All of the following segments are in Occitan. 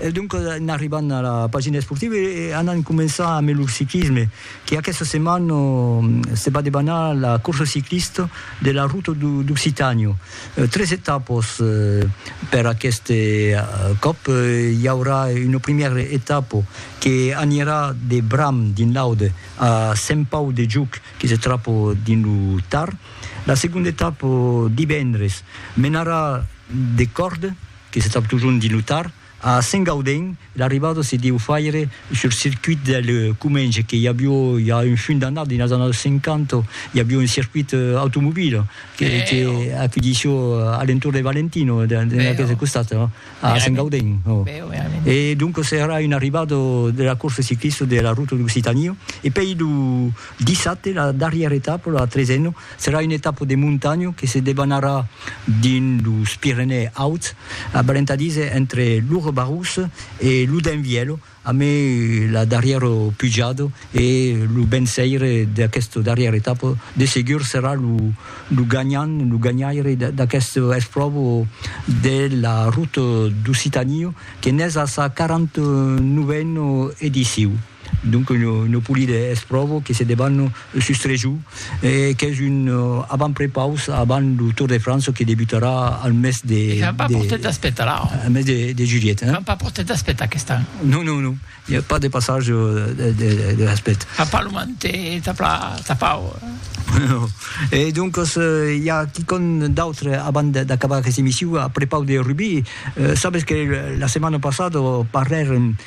E doncas en arribant a la pagina esportiva e anant començar ambe lo ciclisme que aquesta setmana se va debanar la corsa ciclista de la Ruta d'Occitània. Tres etapas per aquest còp, i aurà una primièra etapa que anirà de Bram dins l'Aude a Sent Pau de Juc que se tròba dins lo Tar. La segonda etapa, divendres, menarà de Còrde que se trap totjorn dins lo tard, a Saint-Gaudens, l'arribada se deu faire sul circuit del Comenge, que i avió ja un funt d'annadas, dins los annadas 50, i avió un circuit automobile que que acudissió a l'entorn de Valentino, dins aqueste costat, a Saint-Gaudens, o. E doncas èra una arribada de la corsa ciclista de la Ruta d'Occitània. E pei lo dissabte, la darrièra etapa, la tresena, Serà una etapa de montanha que se debanarà dins los Pirenèi Auts, aparentadís entre lo Rebarous e lo Denvièlo, amb la darrièra pujada e lo venceire d'aquesta darrièra etapa de segur serà lo ganhant, lo ganhaire d'aquesta espròva de la Ruta d'Occitània que n'es a sa 49a edicion. Donc lo polide es pròvo que se debanne lo sustrejor e qu'es un avantprepaus avant lo Tour de França que debutarà al mes de... E qu'an pas pro temps d'espetar là. Al mes de julhet. Qu'an pas pro temps d'espetar aquest an. Non, non, non. I a pas de passage de respect. Qu'an pas lo mantet tapau. Non. E doncas i a quicòm d'autre avant d'acabar aquesta emission a prepaus de rugbi. Sabes que la setmana passada parlèrem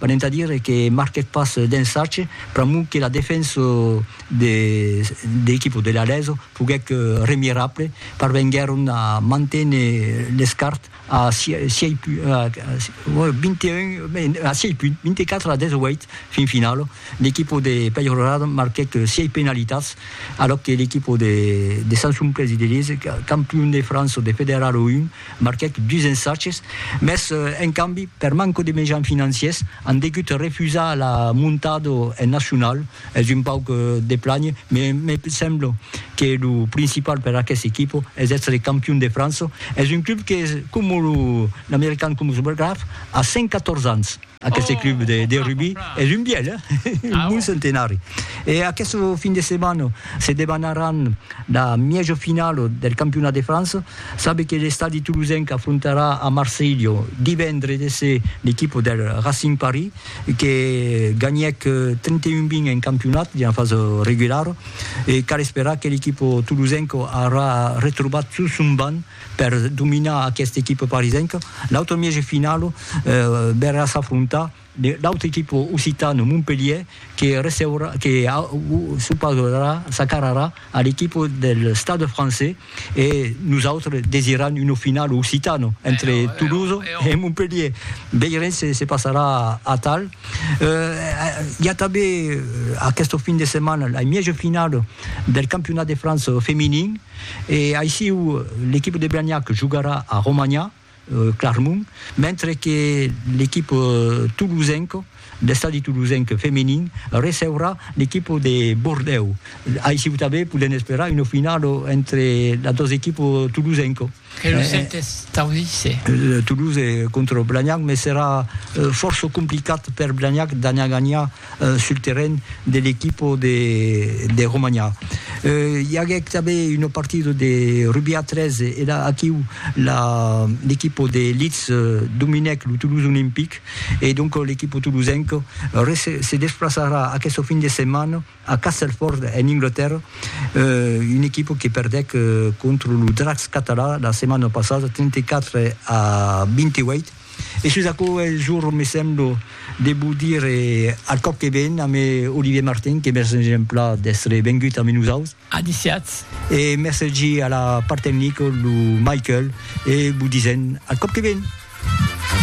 Venent a dire que marquèc pas d'ensatge, pr'amor que la defensa de l'equipa de l'Aleso foguèc remirable, parvenguèron a manténer l'escart a sièis punts, 24 a 18, fin finala. L'equipa de Peyrelade marquèc sièis penalitats, alòc que l'equipa de Sant Sumplés i de Liège, campion de França de Federal 1, Marquèc dus ensatges, mès en cambi, per manco de mejans financiers, an degut refusar la montada en nacional. Es un pauc de plànher, mès me sembla que lo principal per aqueste equipa es èstre campion de França. Es un club que, coma lo American Commonwealth, a 114 ans. Aqueste club de rugbi es un bièlh, un bon centenari. E aqueste fin de setmana se debanaran la mièja finala del campionat de França. Sabe que l'estadi tolosenc afrontarà a Marselha divendre de se l'equipa del Racing Paris que ganhèc 31 20 en campionat dina fasa regulara e cal esperar que l'equipa tolosenca aurà retrobat tot son banc Per dominar aquesta equipa parisenca, l'autre mièg de finala verrà s'afrontar l'autre equipa occitana Montpelhier que receurà que s'opausarà, s'acararà a l'equipa del Stade Français e nosautres desiram una finala occitana entre Toulouse e Montpelhier. Veirem se se passarà atal. Hi a tanben aquesta fin de setmana la mièja finala del campionat de França feminin. E aissiu l'equipa de Blagnac jogarà a Romanha, Clarmont, mentre que l'equipa tolosenca, l'Estadi Tolosenc feminin, receurà l'equipa de Bordèu. Aissiu tanben podèm esperar una finala entre las dos equipas tolosenca. Que lo sentes taudisse. Le Toulouse contra Blagnac, mès serà fòrça complicat per Blagnac d'anar ganhar sul terren de l'equipa de Romanha. I aguèc tanben una partida de rugbi a 3 e la aquiu l'equipa de Leeds dominèc lo Toulouse Olympic e donc l'equipa toulousenca se desplaçarà aquesta fin de setmana A Castelford, en Anglatèrra, una equipa que perdèc contra lo Dracs català la setmana passada 34 a 28. E sus aquò es jorn, me sembla, de vos dire al còp que ven a me Olivier Martin, que mercen exempla d'èstre vengut amé nosaus. Adiciatz. E mercegi a la part tecnica lo Michael e vos disen al còp que ven.